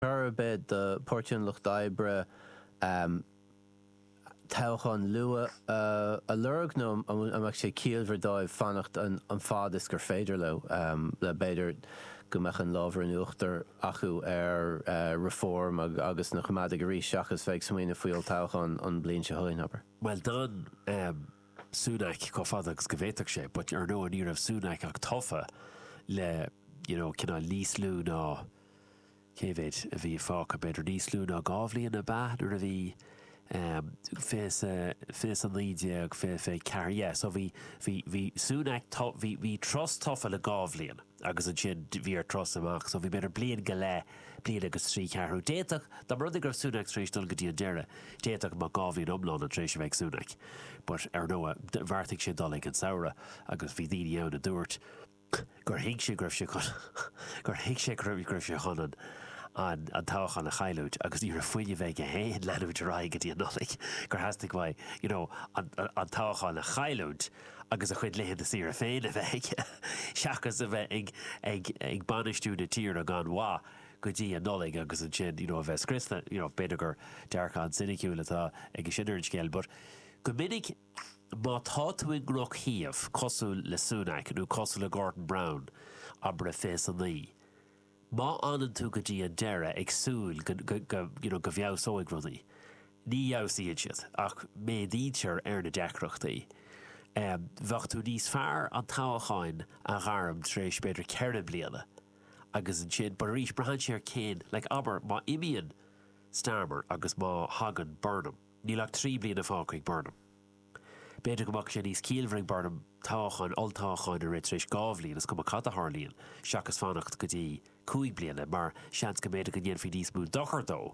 chor ar bith do Pháirtí an Lucht Oibre toghchán luath a lorg nó an mbeadh sé ciallmhar dóibh fanacht an fad is gur féidir leo, le, b'fhéidir, go mbeadh an lámh in uachtar acu ar Reform agus na Coimeádaigh arís seachas bheith ag smaoineamh faoi olltoghchán an bhliain seo chugainn, abair? Bhuel, d'fhan Sunak chomh fada agus go bhféadfadh sé, but, ar ndóigh, ní raibh Sunak ach tofa le, you know, cineál níos lú ná, Cé mhéid a bhí fágtha? B'fhéidir níos lú ná dhá bhliain ab ea nuair a bhí fiche naoi déag, fiche fiche ceathair dhe. So bhí, bhí, bhí Sunak, bhí, bhí Truss tofa le dhá bhliain agus ansin bhí Truss amach. So bhí b'fhéidir bliain go leith, bliain agus trí cheathrú. D'fhéadfadh, dá mba rud é go raibh Sunak tar éis dul go dtí an deireadh, d'fhéadfadh go mbeadh dhá bhliain iomlán tar éis a bheith ag Sunak. But ar ndóigh, bheartaigh sé dul ag an samhradh agus bhí daoine ann a dúirt, gur thuig sé go raibh sé chun gur thuig sé go raibh sé chun an an an toghchán a chailliúint agus ní raibh fuinneamh aige féin leanúint ar aghaidh go dtí an Nollaig, gur theastaigh uaidh you know an an toghchán a chailliúint agus a chuid laethanta saoire féin a bheith aige seachas a bheith ag ag ag bainistiú na tíre gan mhaith go dtí an Nollaig agus ansin you know a bheith scriosta. You know b'fhéidir gur dearcadh an-soiniciúil atá agamsa ar an scéal but go minic Má tá tú i ndrochshuíomh cosúil le Sunak nó cosúil le Gordon Brown, abair fiche a naoi. Má fhanann tú go dtí an deireadh ag súil go, you know, go bhfeabhsóidh rudaí, ní fheabhsaíonn siad ach méadaítear ar na deacrachtaí. Bheadh tú níos fearr an toghchán a ghairm tar éis b'fhéidir ceithre bliana agus ansin, but arís, braitheann sé ar cén, like abair má imíonn Starmer agus má thagann Burnham. Níl ach trí bliana fágtha ag Burnham. B'fhéidir go mbeadh sé níos ciallmhar ag Burnham toghchán, olltoghchán, a rith tar éis dhá bhliain, is cuma cad a tharlaíonn, seachas fanacht go dtí cúig bliana, mar seans go mb'fhéidir go ndéanfaí níos mó dochair dó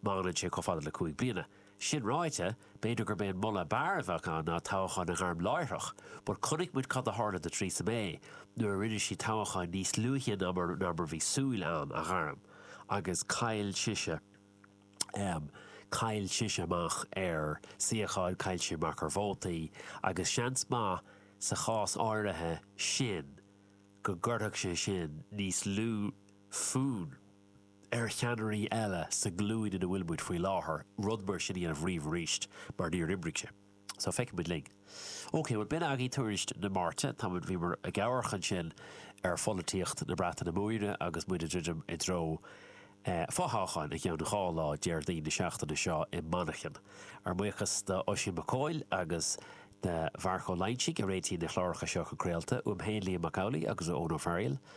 má fhanann sé chomh fada le cúig bliana. Sin ráite, b'fhéidir gurb é an moladh ab fhearr a bheadh ann ná toghchán a ghairm láithreach, but chonaic muid cad a tharla do Theresa May nuair a rinne sí toghchán níos luaithe ná mar a bhí súil ann a ghairm, agus chaill sise. em. chaill sise amach ar shuíocháin, chaill sí amach ar vótaí, agus seans maith sa chás áirithe sin go gcuirfeadh sé sin níos lú foinn ar cheannairí eile sa nglúin ina bhfuil muid faoi láthair rud mar sin a dhéanamh riamh arís, mar níor oibrigh sé. So, feicfidh muid linn. OK, bhuel, b'in agaibh tuairisc na Máirte. Tá muid, bhíomar ag amharc ansin ar pholaitíocht na Breataine Móire agus muid ag druidim i dtreo fothoghcháin i gceann dhá lá, Déardaoin na seachtaine seo i Manchain. Ár mbuíochas d'Oisín Mac Cóil agus de Mharc Ó Loingsigh a réitíonn na cláracha seo chun craolta, uaim féin, Liam Mac Amhlaigh, agus ó Eoin Ó Fearghaíl.